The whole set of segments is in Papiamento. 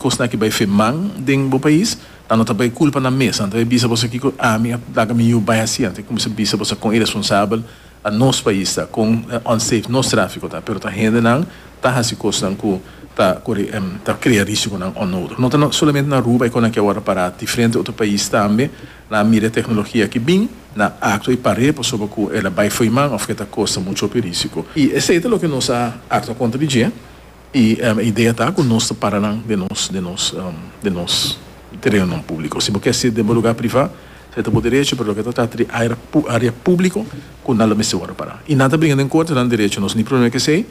Kosnan ki bai fe man den bo pais, ta no ta bai kulpa nan mes, nan ta bai bisa boso kiko ami a laga mi yu bai hasi, anto e kuminsa bisa boso kon iresponsabel ta nos pais ta, kon unsafe nos trafiko ta, pero ta hendenan ta hasi kosnan ku ta kore ta krea risikonan onnodig. No ta solamente na Aruba e kon nan ke wòrdu pará, diferente otro pais tambe nan a mira e teknologia aki bin, nan a aktua i par'é pasobra ku el a bai fo'i man òf ku e ta kosta mucho hopi risiko. I esei ta loke nos a aktua kontra di dje. I e idea ta ku nos ta para nan den nos den nos den nos tereonan públiko. Si bo ke hasi den bo lugá privá, esei ta bo derecho, pero loke ta trata di área área públiko ku nan lo mester wòrdu pará. I nan ta bringa den korte, nan derecho, nos ni problema ku esei,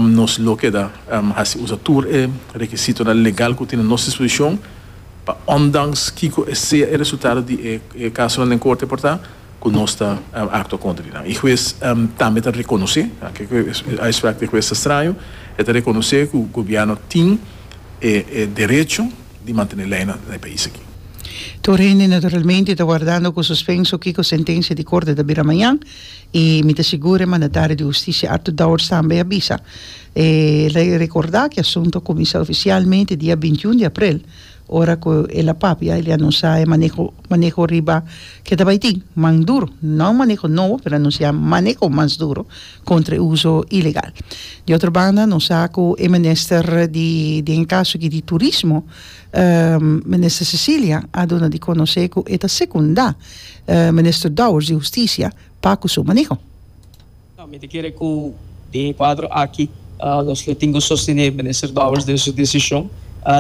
nos lo keda hasi usa tur e rekisitonan legal ku tin na nos disposishon pa ondanks kiko e sea e resultado di e e kasonan den korte por ta, ku nos ta aktua kontra di nan. E hues tambe ta rekonosé, ke ku e uitsprak di e hues ta straño, e ta rekonosé ku gobièrnu tin e derecho di mantené leinan na e pais aki. Tur hende naturalmente ta wardando ku suspenso kiko sentensia di korte ta bira mañan i mi ta sigur e mandatario di hustisia Arthur Dowers tambe a bisa. E rekordá ku e asuntu a kuminsá ofisialmente dia bintiun di aprel Ora cu el a papia el ya nunsia e maneho, maneho riba keda bay tin, man duro, no maneho nobo pero a nunsia maneho mas duro contra e uzo ilegal. Di otro banda nos sa cu e minister di den e caso aki di turismo, minister Cecilia a duna di conoce cu e ta secunda minister Dowers di Husticia pa cu su maneho. Mi ta kere ku den e kuadro aki nos lo tin ku sostené Minister Dowers den su desishon.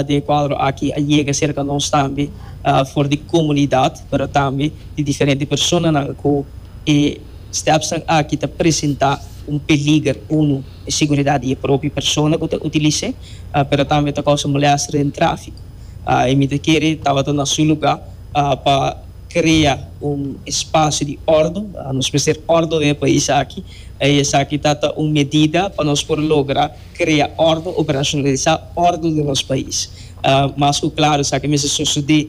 Den e kuadro aki a yega serka nos tambe for di komunidat pero tambe di diferente personanan ku e stèpsnan aki ta presentá un peliger. Uno e seguridat di e propio persona ku ta utilis'é pero tambe ta kousa molèster den tráfiko. Mi ta kere tabata na su lugá pa. crea un espacio di ordo, nos mester ordo den e pais aki, y esaki ta ta un medida pa nos por logra crea ordo, operacionalisa ordo den nos pais. Mas cu claro esaki mester sucede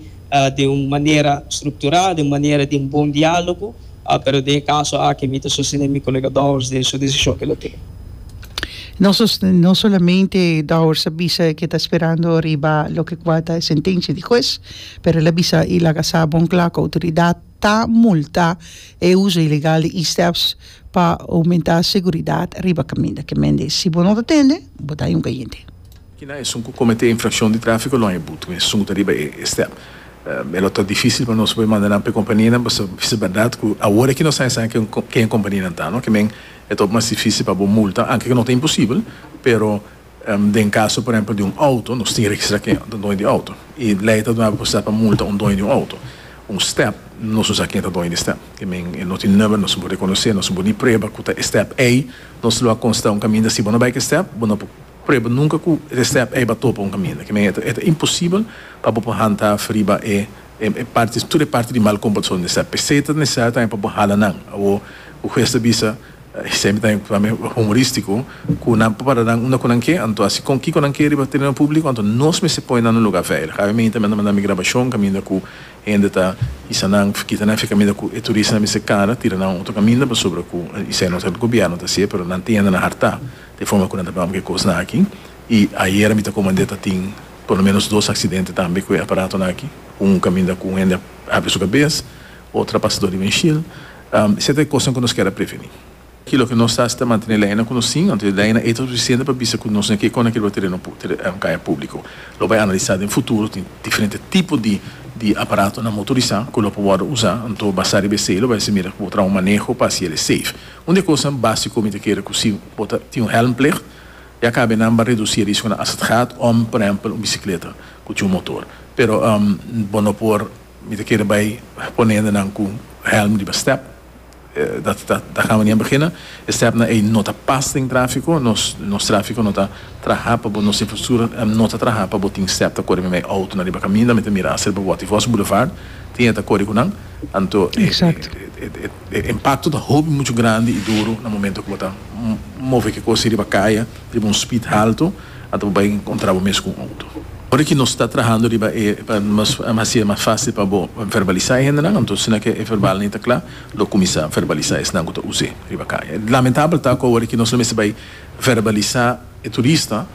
den un manera structura, den un manera den bon dialogo, pero den e caso aki mi ta sostene mi colega Dowers den su decision cu lo tin. No solamente Dowers a bisa ke ta sperando riba loke cua ta e sentencia di huez, Pero el a bisa y laga sa bon cla cu autoridad ta multa e uzo ilegal di e-steps pa aumenta seguridad riba caminda. Ke mende si bo no ta tende, bo ta yunca yende. Kinan esun cu comete infraccion di trafico long e but cu esun cu ta riba e e-step? E lo ta dificil pa nos pa e manda nan pa e compania nan pasobra bisa berdad cu awor aki nos a hesa ken e compania nan ta no. Ke men e ta hopi mas dificil pa bo multa anke cu no ta imposibel pero. Den kaso por ehempel di un outo, nos tin registrá ken ta doño di outo. E lei ta dunaba posibilidat pa multa un doño di un outo. Un stèp, nos no sa ken ta doño di e stèp. Ke men, e no tin number, nos no por rekonosé, nos no por ni prueba ku ta e stèp ei. Nos lo a konstatá un kaminda si bo no bai ku e stèp, bo no por prueba nunka ku e stèp ei bo a topa un kaminda. Ke men, e ta imposibel pa bo por hanta riba e e parti, tur e parti di mal komportason di e stèp. P'esei ta nesesariu tambe pa bo hala nan. Awor, ku hues ta bisa. Semi ta tambe humoristico cu nan por para nan unda cu nan ke, anto así con kico nan ke riba tereno publico, anto nos mester pone nan na un lugar veilig. Awe mi tambe a manda mi grabacion caminda cu hende ta hisa nan, kita nan fe caminda cu e turista nan mester cara tira nan otro caminda pasobra cu esei no ta el gobierno ta haci'e pero nan tin hende nan hartá di e forma cu nan ta bamba cu e cosnan aki y ayera mi ta comand'e ta tin por lo menos dos accidente tambe cu e aparatonan aki un caminda cu hende a habri su cabes Otro pasador di windshield. Esey ta e cosnan cu nos kier a preveni. Ki loke nos ta haci ta mantene ley nan cu nos tin, anto e ley nan ey ta suficiente pa bisa cu nos na kiko nan kiriba tereno caya publico. Lo bay analisa den futuro, tin diferente tipo di di aparato nan motorisa cu lo por wordo usa, anto basa riba esey lo bay haci mira cu bo traha un maneho pa haci yel e safe. Un di e cosnan basico mi ta kere cu si bo ta tin un helmplicht, ya cabe nan ba reduci e risco nan asatigad, om por ehempel un bicicleta cu tin un motor. Pero bo no por. Mi ta kere bai pone hende nan ku hèlm riba stèp. Dat ta ta kamba nian begina. E stèpnan ei no ta pas den tráfiko. Nos nos tráfiko no ta traha pa bo, nos infrastruktura no ta traha pa bo tin stèp ta kore mi mei outonan riba kaminda. Mi ta mira aser pa Boti Vos Boulevard, tin e ta kore ku nan. Anto e e impakto ta hopi muchu grandi i duru na momentu ku bo ta move ke kos ei riba kaya riba un spid haltu. Ata bo bai kontra bo mes ku un outo. Ora ki nos ta trahando riba e, pa nos hasi e mas fásil pa bo verbalisá e hendenan, anto asina ku e verbal ni ta kla, lo kuminsá verbalisá esnan ku ta us'é riba kaya. Lamentabel ta ku ora ku nos lo mester bai verbalisá e turista,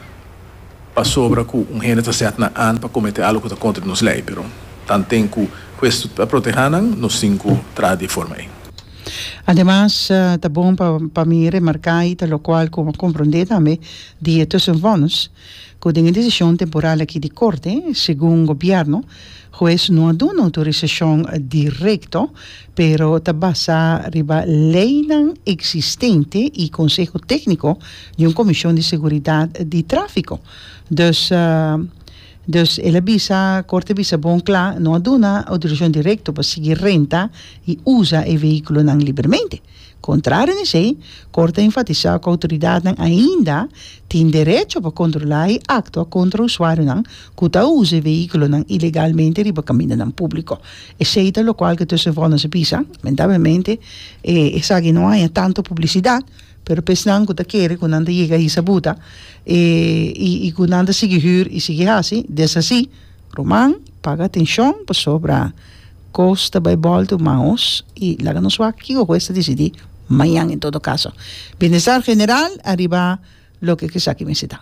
pasobra ku un hende ta sèt nan an pa kometé algu ku ta kontra di nos lei, pero tanten ku ku esto ta protehá nan, nos tin ku traha di e forma ei. Ademas, ta bon pa pa mi remarká i ta lokual ku a komprondé tambe di e tussenvonnis ku den e desishon temporal aki di Korte, segun Gobièrnu, hues no a duna outorisashon direkto, pero ta basá riba leinan eksistente i konseho tékniko di un komishon di seguridat di tráfiko. Dus. Dus el a bisa, Corte a bisa bon cla, no a duna autorisacion directo pa sigui renta y usa e vehiculonan libremente. Contrario na esey, Corte a enfatisa cu autoridadnan ainda tin derecho pa controla y actua contra usuarionan cu ta usa e vehiculonan ilegalmente riba camindonan publico. Esey ta locual cu tussen vorners a bisa. Lamentablemente, esaki no haña tanto publicidad. Pero pa esnan ku ta kere ku nan ta yega hisa buta i ku nan ta sigui hür i sigui hasi, desasi, ruman, paga atenshon pasobra kos ta bai bòlta man os i laga nos wak kiko ku es ta disidí mañan. En todo kaso, bienestar general ariba loke ke esaki mester ta.